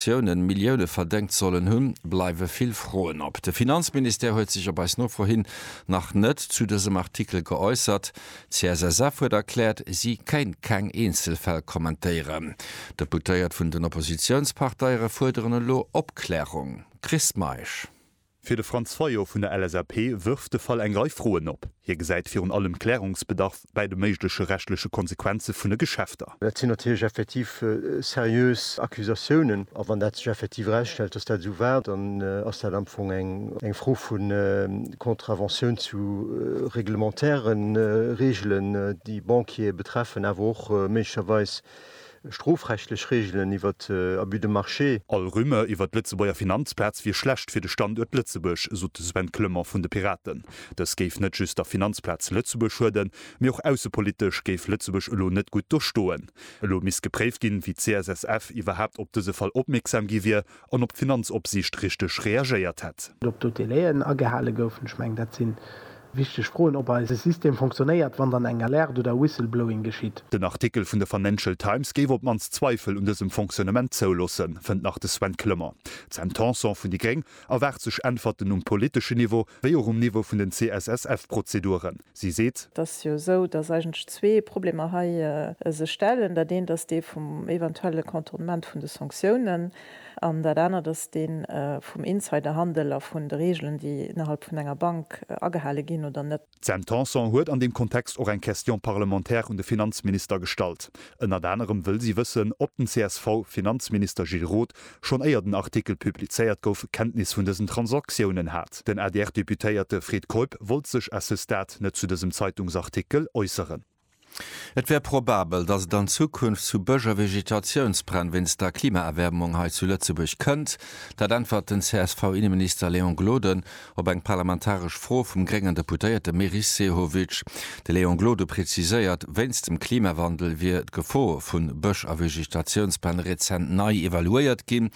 Investitiounen Millioune verdéngt sollen hunn, bleiwe vill Froen op. De Finanzministère huet sech op eis Nofro hin nach net zu dësem Artikel geäussert. D'CSSF huet erkläert, si kéint keng Eenzelfäll kommentéieren. D'Deputéiert vun den Oppositiounsparteiere fuerderen elo Opklärung. Chris Meisch. Fir de Franz Fayot vun der LSAP wërft de Fall eng Rei Froen op. Hie gesäit virun allem Klärungsbedarf bäi de méigleche rechtleche Konsequenze vun de Geschäfter. Dat sinn natierlech effektiv seriös Accusatiounen. A wann dat sech effektiv erausstellt, datt dat esou war, dann ass dat am Fong eng Fro vu Contraventioun zu reglementäre Reegelen, déi Banquiere betreffen, awer och méiglecherweis Strofrechtlech Reegelen iwwer Abus de marché. All Rumeur iwwer d'Lëtzebuerger Finanzplaz wier schlecht fir de Standuert Lëtzebuerg, sot de Sven Clement vun de Piraten. Dës géif net just der Finanzplaz Lëtzebuerg schueden, mee och aussepolitesch géif Lëtzebuerg elo net gutt do stoen. Elo misst gepréift ginn, wéi d'CSSF iwwerhaapt op dëse Fall opmierksam gi wier an ob d'Finanzopsiicht richteg reagéiert hätt. Ob do d'Délai'en agehale goufen, ech mengen dat si wichteg Froen, ob eise System fonctionnéiert, wann dann eng Alerte oder Whistleblowing geschitt. Den Artikel vun der Financial Times géif op d'mannst Zweifel un dësem Fonctionnement zouloossen, fënnt nach de Sven Clement. D'Sam Tanson vun déi Gréng erwaart sech Äntwerten um politeschen Niveau, wéi och um Niveau vun den CSSF-Prozeduren. Si seet. Et ass jo esou, dass eigentlech zwee Problemer hei sech stellen. Dat eent ass dee vum eventuelle Contournement vun de Sanktiounen an dat anert ass dee vum Insiderhandel a vun de Reegelen, déi innerhalb vun enger Bank agehale ginn oder net. D'Sam Tanson huet an deem Kontext och eng Question parlementaire un de Finanzminister gestallt. Ënnert anerem wëll si wëssen, ob den CSV-Finanzminister Gilles Roth schonn éier den Artikel publizéiert gouf, Kenntnis vun dësen Transaktiounen hat. Den ADR-Deputéierte Fred Keup wollt sech à ce stade net zu dësem Zeitungsartikel äusseren. Et wär probabel, datt et an Zukunft zu Bëscher-Vegetatiounsbränn wéinst der Klimaerwäermung hei zu Lëtzebuerg kënnt. Dat äntwert den CSV-Inneminister Léon Gloden Op eng parlamentaresch Fro vum gréngen Deputéierte Meris Sehovic, de Léon Gloden preziséiert, wéinst dem Klimawandel wier d'Gefor vu Bësch a Vegetatiounspläne rezent nei evaluéiert ginn.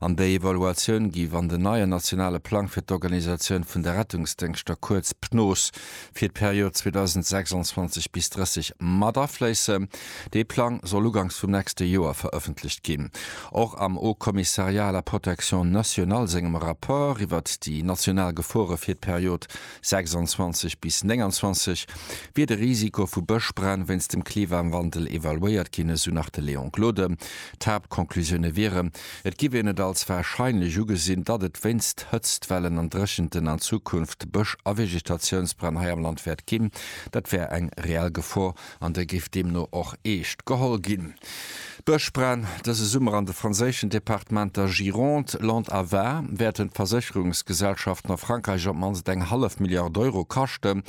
An déi Evaluatioun géif an den neien nationale Plang fir d'Organisatioun vun de Rettungsdéngschter, kuerz PNOS, fir d'Period 2026 bis 30 mat afléissen. Dee Plang soll ugangs vum nächste Joer verëffentlecht ginn. Och am Haut Commissariat à la protection nationale sengem Rapport iwwert déi national Gefore fir d'Period 26 bis 29 wier de Risiko vu Bëschbränn wéinst dem Klimawandel evaluéiert ginn, esou nach de Léon Gloden. D'Haaptconclusioune wieren, Et giff een et als warscheinlech ugesinn, datt et wéinst Hëtztwellen an Dréchenten an Zukunft Bësch a Vegetatiounsbränn hei am Land wäert ginn. Dat wär eng reell Gefor an der géif deemno och eescht geholl ginn. D'Bëschbränn dëse Summer an de franséischen Departementer Gironde, Lot a Var wäerten d'Versécherungsgesellschaften a Frankräich op d'mannst eng hallef Milliard Euro kaschten.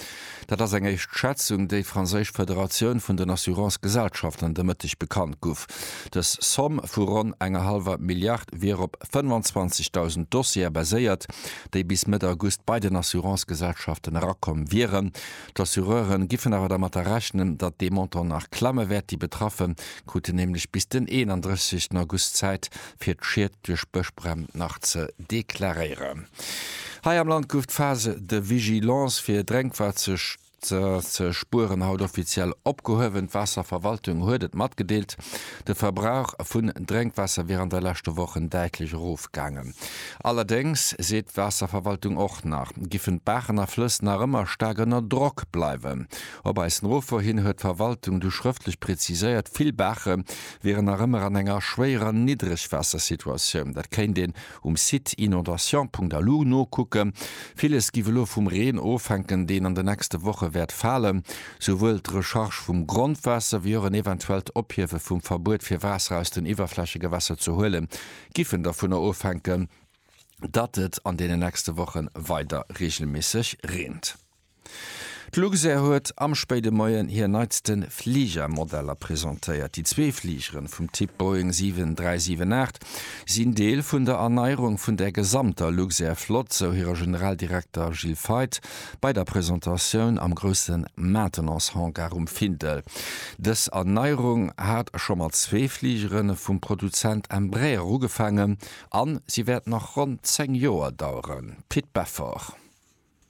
Dat ass eng éischt Schätzung, déi franséisch Federatioun vun den Assurance-Gesellschaften de Mëtteg bekannt guff. Dës Somm vu ronn enger hallwer Milliard wier op 25.000 Dossiere baséiert, déi bis Mëtt August bei den Assurance-Gesellschaften erakomm wieren. D'Assureure giffen awer dermatter rechnen, datt dee Montant nach klamme wäert. Déi Betraffe kruten nämlech bis den 31 August Zäit, fir d'Schied. duerch Bëschbränn nach ze deklaréieren. Hei am Land gouf d'Phase de vigilance fir Drénkwaatser ze spueren haut offiziell opgehuewen. D'Waasserverwaltung huet et matgedeelt, de Verbrauch vun Drénkwaasser wier an de leschte Wochen däitlech erofgaangen. Allerdéngs seet d'Waasserverwaltung och nach, giffen d'Baachen a Flëss nach ëmmer staark ënner Drock bleiwen. Op eis Nofro hin huet d'Verwaltung du schrëftlech preziséiert, vill Baache wieren nach ëmmer an enger schwéierer Niddregwaassersituatioun. Dat kéint een um Site inondations.lu nokucken. Villes giff elo vum Reen ofhänken, deen an de nächste Woche wäert falen. Souwuel d'Recharge vum Grondwaasser wéi och en eventuellt Ophiewe vum Verbuet fir Waasser aus den Iwwerflächegewässer ze huelen, giffen dovunner ofhänken, datt et an deenen nächste Wochen weider reegelméisseg reent. D'Luxair huet am spéide Moien hir neitste Fligermodeller presentéiert. Déi zwee Fligeren vum Typ Boeing 7378 sinn Deel vun der Erneierung vun der gesamter Luxair-Flott, sou hire Generaldirekter Gilles Feith bei der Presentatioun am grousse Maintenance-Hangar um Findel. Dës Erneierung hat scho mat zwee Fligere vum Produzent Embraer ugefaangen a si wäert nach ronn 10 Joer daueren, Pit Beffort.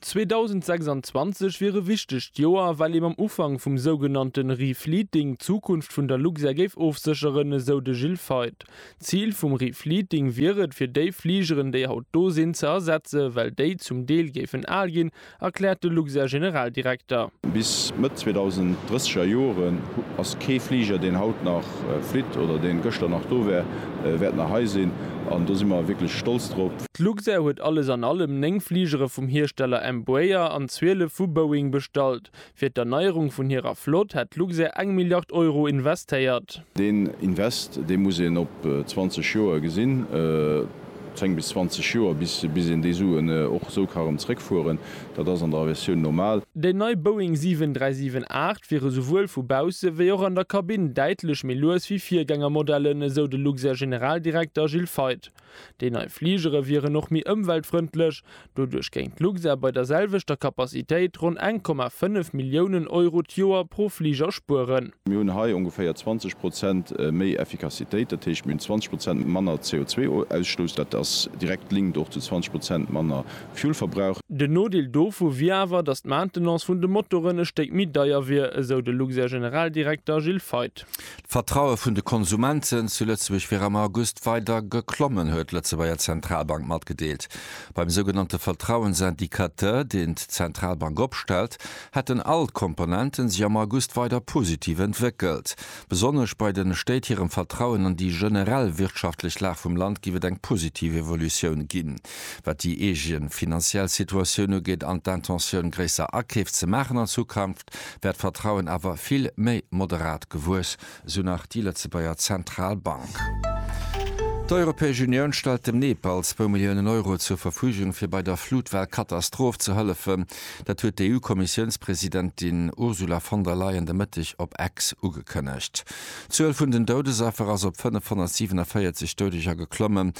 2026 wier e wichtegt Joer, well ee mam Ufank vum sougenannte Refleeting d'Zukunft vun der Luxair géif ofsécheren, esou de Gilles Feith. D'Zil vum Refleeting wier et, fir déi Fligeren, déi haut do sinn, ze ersetzen, well déi zum Deel géifen al ginn, erkläert de Luxair-Generaldirekter. Bis Mëtt 2030 er Joren ass kee Fliger, deen haut nach flitt oder deen gëschter nach do war, wäert nach hei sinn. An do si mer wierklech stolz drop. D'Luxair huet alles an allem 9 Fligere vum Hiersteller Embraer an 12 vu Boeing bestallt. Fir d'Erneierung vun hirer Flott hätt d'Luxair eng Milliard Euro investéiert. Deen Invest, dee muss een op 20 Joer gesinn, 10 bis 20 Joer, bis een déi Suen och esou ka erëm zeréckfueren. Dat ass an der Aviatioun normal. Déi nei Boeing 7378 wier esouwuel vu bausse wéi och an der Kabinn däitlech méi lues wéi Virgängermodellen, esou de Luxair-Generaldirekter Gilles Feith. Déi nei Fligere wieren och méi ëmweltfrëndlech. Doduerch géing d'Luxair bei der selwechter Capacitéit ronn eng Komma fënnef Milliounen Euro d'Joer pro Fliger spueren. Mir hunn hei ongeféier 20 Prozent méi Effikassitéit, dat heescht mir hunn 20 Prozent manner CO2-Ausstouss. Dat ass direkt linked och zu 20 Prozent manner Fuel-Verbrauch. Den Nodeel dovu wier awer, datt d'Maintenance vun de Motoren e Stéck méi deier wier, esou de Luxair-Generaldirekter Gilles Feith. D'Vertraue vun de Konsumenten zu Lëtzebuerg wier am August weider geklommen, huet d'Lëtzebuerger Zentralbank matgedeelt. Beim sougenannte Vertrauensindicateur, deen d'Zentralbank opstellt, hätten all d'Komponenten sech am August weider positiv entwéckelt. Besonnesch bei de Stéit hirem Vertrauen an déi generell wirtschaftlech Lag vum Land géif et eng positiv Evolutioun ginn, wat déi eege finanziell Situatioun ugeet an d'Intentioun, gréisser Akeef ze maachen an Zukunft. wär d'Vertrauen awer vill méi moderat gewuess, esou nach déi Lëtzebuerger Zentralbank. D'Europäesch Unioun stellt dem Nepal zwou Milliounen Euro zur Verfügung, fir bei der Flutwell-Katastroph ze hëllefen. Dat huet d'EU-Kommissiounspresidentin Ursula von der Leyen de Mëtteg op X ugekënnegt. D'Zuel vun den Doudesaffer ass op 547 Doudeger geklommen.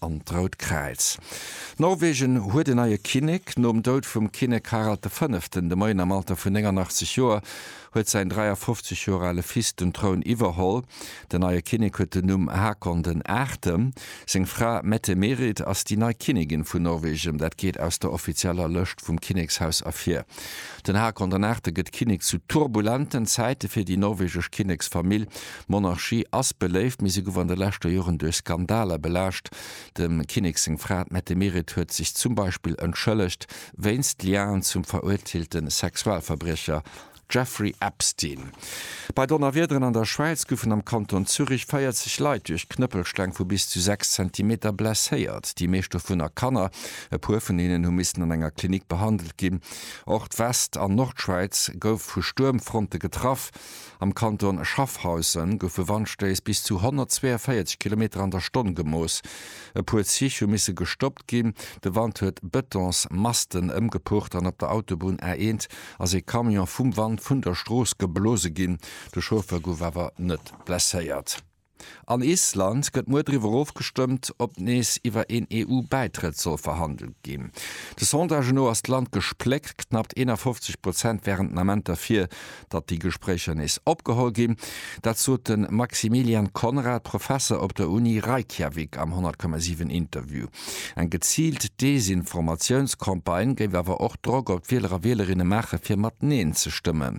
an d'Rout Kräiz. Norwegen huet en neie Kinnek. Nom Doud vum Kinnek Harald de Fënneften de Moien am Alter vun 89 Joer huet säin 53 Joer ale Fils den Troun iwwerholl. Den neie Kinnek huet den Numm Hakon den Aachte. Seng Fra Mette-Merit ass déi nei Kinnigin vun Norwegen. Dat geet aus der offizieller Lëscht vum Kinnekshaus ervir. Den Hakon den Aachte gëtt Kinnek zu turbulenten Zäite fir déi norwegesch Kinneksfamill. D'Monarchie ass beléift, mee se gouf an de leschter Joren duerch Skandaler belaascht. Dem Kinnek seng Fra, d'Mette Meret, huet sech zum Beispill entschëllegt wéinst Liaen zum verurteelte Sexualverbriecher Jeffrey Epstein. Bei Donnerwiederen an der Schwäiz goufen am Kanton Zürich 40 Leit duerch Knëppelsteng vu bis zu 6 Zentimeter blesséiert, déi meescht dovunner Kanner. E puer vun hinnen hu missen an enger Klinik behandelt ginn. Och d'West an Nordschwäiz gouf vu Stuermfronte getraff. Am Kanton Schaffhausen goufe Wandstéiss bis zu 142 Kilometer an der Stonn gemooss. E puer Zich hu misse gestoppt ginn. De Wand huet Betonsmasten ëmgepucht an op der Autobunn A1 ass ee Camion vum Wand vun der Strooss geblose ginn. De Chauffeur gouf awer net blesséiert. An Island gëtt muer driwwer ofgestëmmt, ob nees iwwer een EU-Bäitrëtt soll verhandelt ginn. De Sondagë no ass d'Land gespléckt, knappt 51 Prozent wären den Ament derfir, datt déi Gespréicher nees opgeholl ginn. Dat sot de Maximilian Conrad, Professer op der Uni Reykjavik am 100,7 Interview. Eng geziilt Desinformatiounscampagne géif awer och Drock op d'Wieler a Wielerinne maachen, fir mat Neen ze stëmmen.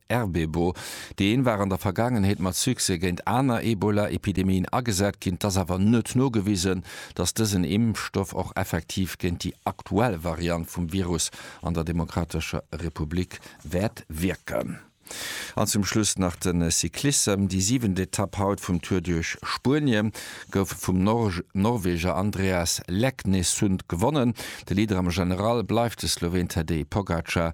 RBbo, Déi een war an der Vergaangenheet mat Succès géint aner Ebola-Epidemien agesat ginn. Et ass awer net nogewisen, datt dësen Impfstoff och effektiv géint déi aktuell Variant vum Virus an der Demokratescher Republik wäert wierken. An zum Schluss nach de Cyclissem, Déi siwent Etapp haut vum Tour duerch Spuenie gouf vum Norweger Andreas Leknesund gewonnen. De Leader am General bleift de Sloween Tadej Pogacar.